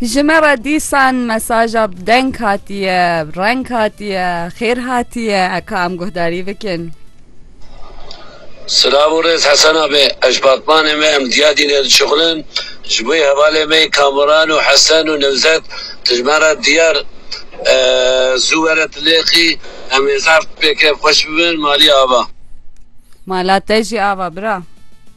Ji me re dîsan mesaja bi deng hatiye, bi reng hatiye, xêr hatiye eka em guhdarî bikin. Silav û rêz Hesena me. Ez ji batmanê me em diya dîne dişuxulin. Ji bo hevalê me Kamuran û Hesen û Newzet tu ji me re diyar zû were Tilêxî em ê zaf pêkevxweş bibin. Malê ava. Mala te jî ava bira.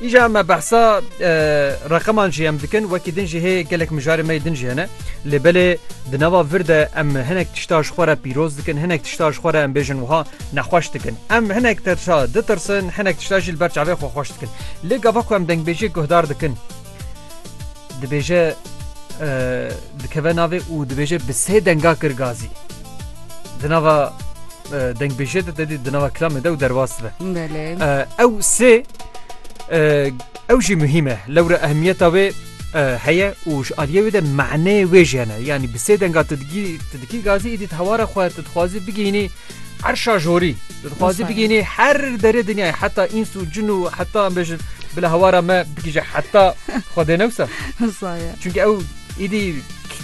Îja me behsa reqeman jî em dikin wekî din jî hê gelek mijarê me din jî hene lê belê di nava vir de em hinek tişta ji xwe re pîroz dikin hinek tişta ji xwe re em bêjin wiha nexweş dikin em hinek tişta ditirsin hinek tişta jî li ber çavê xwe xweş dikin lê gava ku em dengbêjiyê guhdar dikin Dibêje dikeve navê û dibêje bi sê denga kir gazî. Di nava dengbêje de dedî di nava kilamê de û derwas dibe. Ew sê ew jî muhîm e lewre ehmiyeta wê heye û ji aliyê wê de mehneyê wê jî hene. Yanî bi sê denga tu dikî gazî îdî hewara xwe tu dixwazî bigihînî Erşa jorî dixwazî bigînî her derê dinyayê heta îns û cin û heta em bêjin bila hewara me bigîje heta xwedê newsa Çünkü ew îdî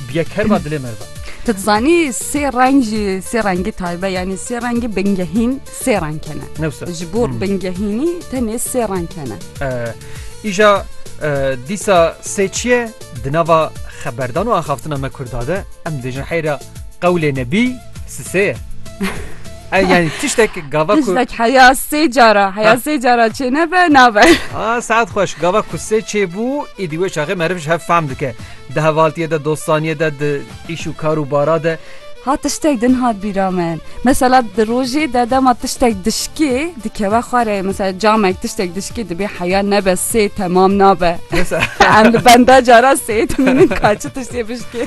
biye kerma dilê me va. Tu dizanî sê reng jî sê rengî taybe yanî sê rengî bingehîn sê reng kene newsa ji bo bingehînî tenê sê reng kene îja dîsa sê çiye di nava xeberdan û axaftina me kurdade em dêjin heyra Qewlê Nebî sisê ye. E, yani tiştek gava ku... Tiştek heya sê cara, heya sê cara çê nebe, nabe. A, saat xweş, gava ku sê çê bû, ê dî wê çaxê meriv ji hev fehm dike. Di hevaltiye de, dostaniye de, di îş û kar û bara de. Ha tiştek din hat bîra min. Mesela di rojê de dema tiştek dişkê dikeve xwarê. Mesela camek tiştek dişkê dibê heya nebe sê temam nabe. Em li benda cara sê dimînin ka çi tiştê bişkê.